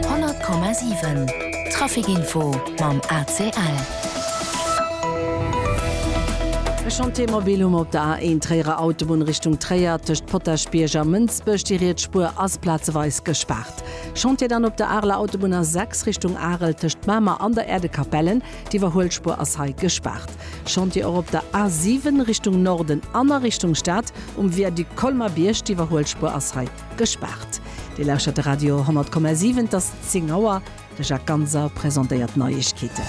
100,7 Trafic Info mam ACL. E Chantier mobil hu mer op der A1 Tréierer Autobunn Richtung Tréier, tëscht Potaschbierg a Mënsbech. Déi riets Spuer ass plazeweis gespaart. Chantier dann op der Areler Autobunn A6 Richtung Arel, tëscht Mamer an der Erdekapellen. D'Iwwerhuelspuer ass hei gespaart. Chantier och op der A7 Richtung Norden an a Richtung Stad um Viaduc Colmer-Bierg. D'Iwwerhuelspuer ass hei. Gespaart. Dir lauschert de Radio 10,7, et ass 10 Auer. De Jacques Ganser presentéiert d'Neiegkeeten.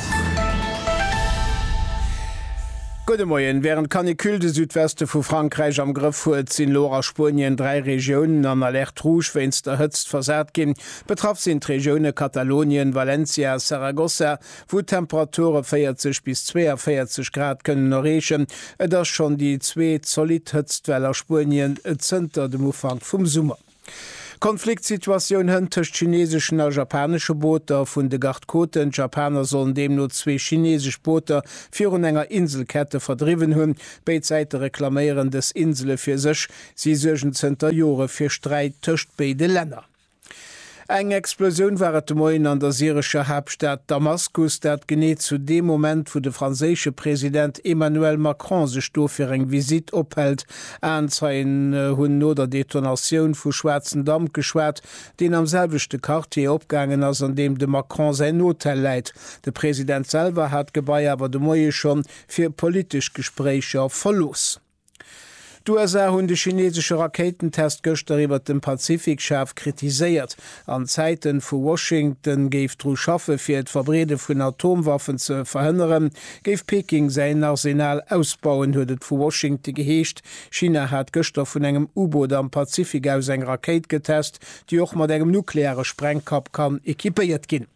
Gudde Moien. Wärend d'Canicule de Südweste vu Frankräich am Grëff huet, sinn elo och a Spuenien dräi Regiounen an Alerte rouge wéinst der Hëtzt versat ginn. Betraff sinn d'Regioune Katalonien, Valencia a Saragossa. wou d'Temperature 40 bis 42 Grad kënnen erreechen. Et ass schonn déi zweet zolidd Hëtztwell a Spuenien zënter dem Ufank vum Summer. Konfliktsituatioun hënt tëscht chineseschen a japanesche Booter vun de Garde Côten. D'Japaner sollen deemno zwee chinesesch Booter virun enger Inselkette verdriwwen hunn. Béid Säite reklaméieren dës Insele fir sech. Si suergen zënter Jore fir Sträit tëscht béide Länner. Eng Explosioun war et de Moien an der syrescher Haaptstad Damaskus, dat genee zu deem Moment, wou de franséische President Emmanuel Macron sech do fir eng Visitt ophält. Aenzeien hunn no der Detonatioun vu schwaarzen Damp geschwat, deen am selwechte Quartier opgaangen ass, an deem dem Macron säin Hotel läit. De President selwer hat d'Gebai awer de Moie schonn fir politesch Gespréicher verlooss. D'USA hunn de chinesesche Rakéitentest gëschter iwwert dem Pazifik schaarf kritiséiert. An Zäiten, wou Washington géif dru schaffe fir d'Verbreede vun Atomwaffen ze verhënneren, géif Peking säin Arsenal ausbauen, huet et vu Washington geheescht, China hat gëschter vun engem U-Boot am Pazifik aus eng Rakéit getest, déi och mat engem nukleare Sprengkapp kann equipéiert ginn.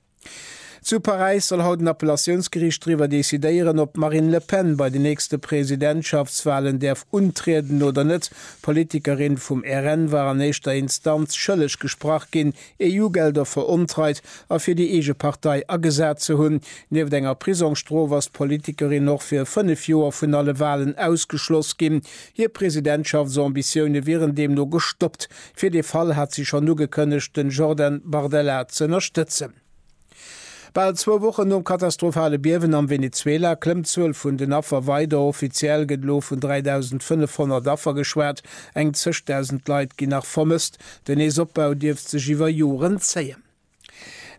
Zu Paräis soll haut en Appellatiounsgeriicht driwwer decidéieren, ob d'Marine Le Pen bei den nächste Presidentschaftswalen däerf untrieden oder net. D'Politikerin vum RN war an éischter Instanz schëlleg gesprach ginn, EU-Gelder verontreit a fir déi eege Partei agesat ze hunn. Nieft enger Prisongsstrof ass d'Politikerin och fir fënnef Joer vun alle Walen ausgeschloss ginn. Hir Presidentschaftsambitioune wieren deemno gestoppt. Fir dee Fall hat si schonn ugekënnegt, den Jordan Bardella z'ënnerstëtzen. Bal zwou Wochen nom katastrophale Biewen am Venezuela klëmmt d'Zuel vun den Affer weider. Offiziell gëtt elo vun 3.500 Affer geschwat. Eng zeg Dausend Leit ginn nach vermësst. Den Neesopbau dierft sech iwwer Joren zéien.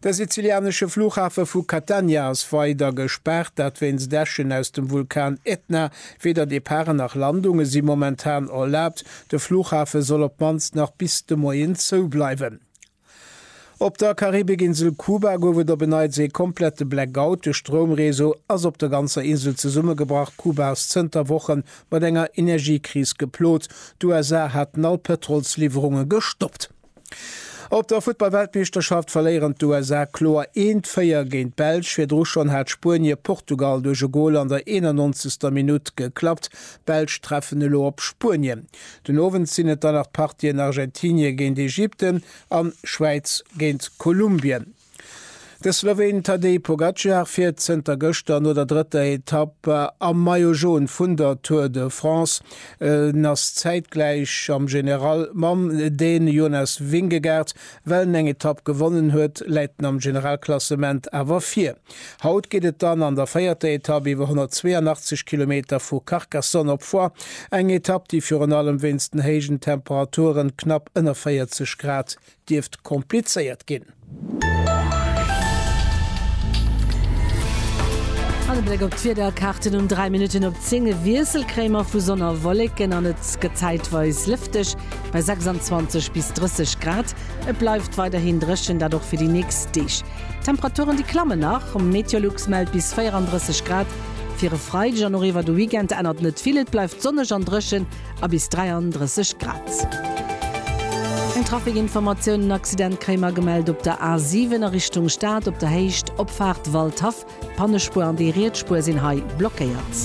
De sizilianesche Flughafe vu Catania ass weider gespaart, dat wéinst Äschen aus dem Vulkan Etna. Weder Departen nach Landunge si momentan erlaabt. De Flughafe soll op d'mannst nach bis de Moien zou bleiwen. Op der Karibikinsel Kuba gouf et op en Neits ee komplette Blackout. De Stroumreseau ass op der ganzer Insel zesummegebrach. Kuba ass zënter Woche mat enger Energiekris geplot. D'USA haten all Pëtrolsliwwerunge gestoppt. Op der Futtballweltmeeschterschaft verléieren d'USA kloer eent 4 géint d'Belsch. Virdru schonn hat Spuenie Portugal duerch e Gol an der 91. Minutt geklappt. D'Belsch treffen elo op Spuenien. Den Owend sinn et dann nach d'Partien Argentinie géint Ägypten an Schwäiz géint Kolumbien. De Sloween Tadej Pogacar fiert zënter gëschter no der drëtter Etapp am Maillot Jaune vun der Tour de France. En ass zäitgläich am General mam Dän Jonas Vingegaard. Well en eng Etapp gewonnen huet, läit en am Generalklassement awer vir. Haut geet et dann an der véierter Etapp iwwer 182 Kilometer vu Carcassonne op Foix, eng Etapp, déi virun allem wéinst den héijen Temperaturen, knapp ënner 40 Grad, dierft komplizéiert ginn. An e Bléck op d'Wiederkaarten, Um 3 Minutten op 10 e Wiessel kréie mer vu Sonn a Wolleken an et gëtt zäitweis lëfteg bei 26 bis 30 Grad. Et bleift weiderhin dréchen, dat och fir déi nächst Deeg. D'Temperaturen déi klammen nach, Meteolux mellt bis 34 Grad fir e Freideg an och iwwer de Weekend ännert net vill, et bleift sonneg an dréchen. a bis 33 Grad. Eng Trafikinformatioun, En Accident kréie mer gemellt op der A7 a Richtung Stad op der Héicht Opfaart Waldhaff. D'Pannespuer an déi riets Spuer sinn hei blockéiert.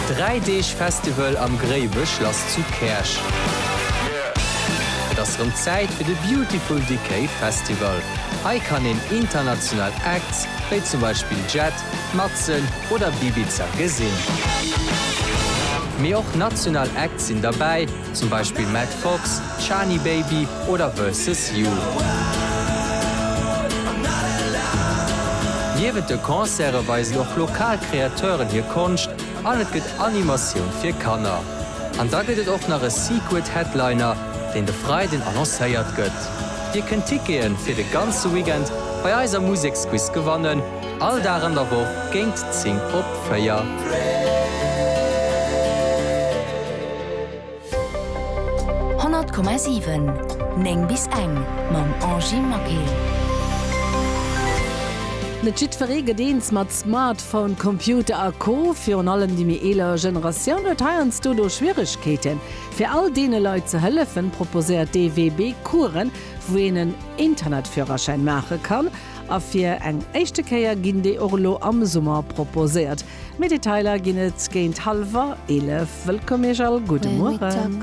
Dräi Deeg Festival am Gréiwechlass zu Käerch. Et ass rëm Zäit fir de Beautiful Decay Festival. Hei kann een international Acte Acts, wéi zum Beispill Jet, Matzen oder Bibiza gesinn. Mee och national Acts sinn derbäi, zum Beispill Matt Fox, Chani Baby oder Versus You. Niewent de Concerte weisen och lokal Kreateuren hir Konscht an et gëtt Animatioun fir Kanner. An da gëtt et och nach e Secret Headliner, deen de Freiden annoncéiert gëtt. Dir kënnt Ticketen fir de ganze Weekend bei eiser Museksquiz gewannen, all Dag an der Woch géint 10 op 4. Honnert Komma siwen, néng bis eng, Mam Angie Maquet. Net jiddferee gëtt eens mat Smartphone, Computer a Co. Virun allem déi méi eeler Generatioun huet heiansdo do Schwieregkeeten. Fir all deene Leit ze hëllefen, proposéiert d'EWB Coursen, wou een en Internetführerschäin maache kann, a fir eng éischte Kéier ginn déi och elo am Summer proposéiert. Méi Detailer ginn et géint hallwer 11. Wëllkomm Iech all, gudde Mueren.